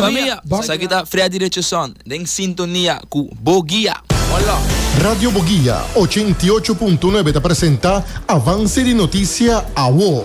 Familia, sa ki ta Freddy Richardson den sintonia ku Bo Guia. Radio Bo Guia ochenta i ocho punto nuebe ta presenta Avance di Noticia Awo.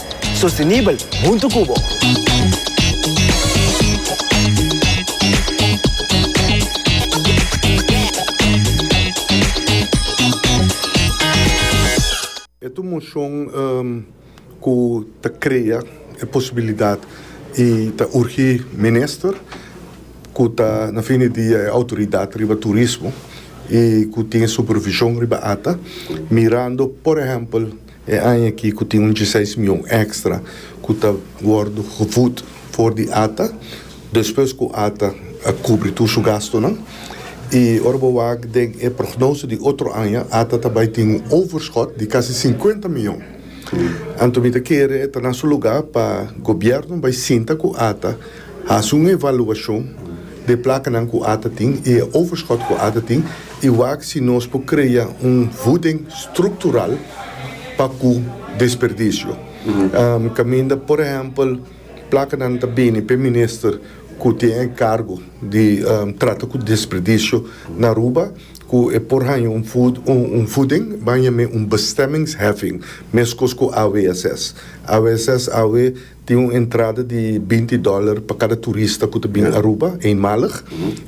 Sostenibel huntu cu bo. E tur mocion cu ta crea e posibilidad y ta urgi Minister, cu ta na fin di dia e autoridad riba turismo y cu tin e supervision riba ata, mirando por ehempel. E aña aki ku tin un djeseis mion èkstra ku ta wòrdu gevut for di ata despues ku ata a kubri tur su gastunan. I ora bo wak den e prognose di otro aña ata ta bai tin un overschot di kasi sinkuenta mion. Anto mi ta kere e ta na su lugá pa gobièrnu bai sinta ku ata Hasi un evaluashon d'e plakanan ku ata tin i e overschot ku ata tin i wak si nos por krea un vuding struktural pa ku desperdisio. Kaminda por ehèmpel plakanan ta bini p'e minister ku tin enkargo di trata ku desperdisio na Aruba ku e por haña un vuding baña mi un bestemmingsheffing, meskos ku AWSS. AWSS awe Tin un entrada di binti dòler pa kada turista ku ta bini Aruba eenmalig,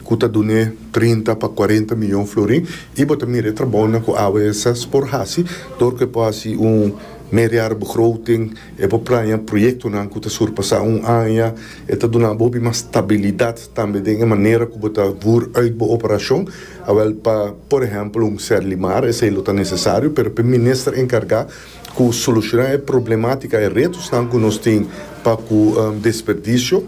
ku ta dun'é trinta pa kuarenta miyon florin, i bo ta mira e trabounan ku AWS por hasi dor ku e por hasi un meerjarenbegroting, e por praña proyektonan ku ta surpasá un aña, e ta duna bo hopi mas stabilidat tambe den e manera ku bo ta vùr uit bo operashon, awèl pa, por ehèmpel, un Serlimar, esei lo ta nesesario, pero pa e minister enkargá cu soluciona e problematica, e retosnan cu nos tin pa cu desperdicio.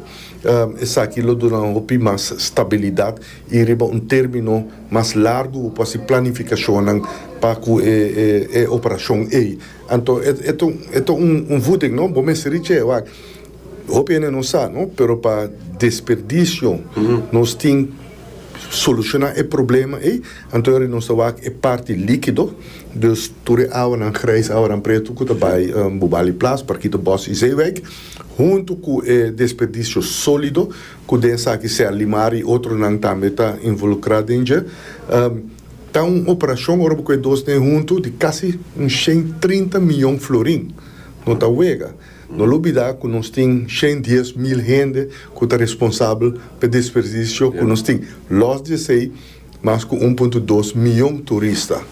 Esaki lo duna un hopi mas stabilidad y riba un termino mas largu bo por haci planificacionnan pa cu e operacion ey. Anto e ta un voeding, no? Bo mester richi e wak. Hopi hende no sa, no? Pero pa desperdicio nos tin soluciona e problema ei, anto yori nos ta wak e parti likido, dus tur e awanan grijs, awanan pretu ku ta bai Bubali Plas, Parkito Bos i Zeewijk, huntu ku e desperdicio solido ku den esaki Sea Limari i otronan tambe ta involukrá den dje. Ta un operashon ora bo ku e dos n'e huntu di kasi un shen trinta miyon florin. No ta wega. No lo bida cu nos tin shen dies mil hende cu ta responsabel p'e desperdicio cu nos tin, los di esey mas cu un punto dos miyon turista.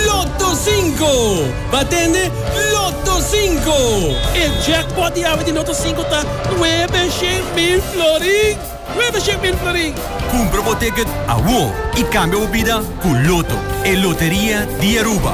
Lotto Cinco! Ba tende Lotto Cinco! E jackpot di awe di Lotto Cinco ta nuebe shen mil florin! Nuebe shen mil florin! Cumpra bo ticket awor y cambia bo bida cu Lotto, e loteria di Aruba!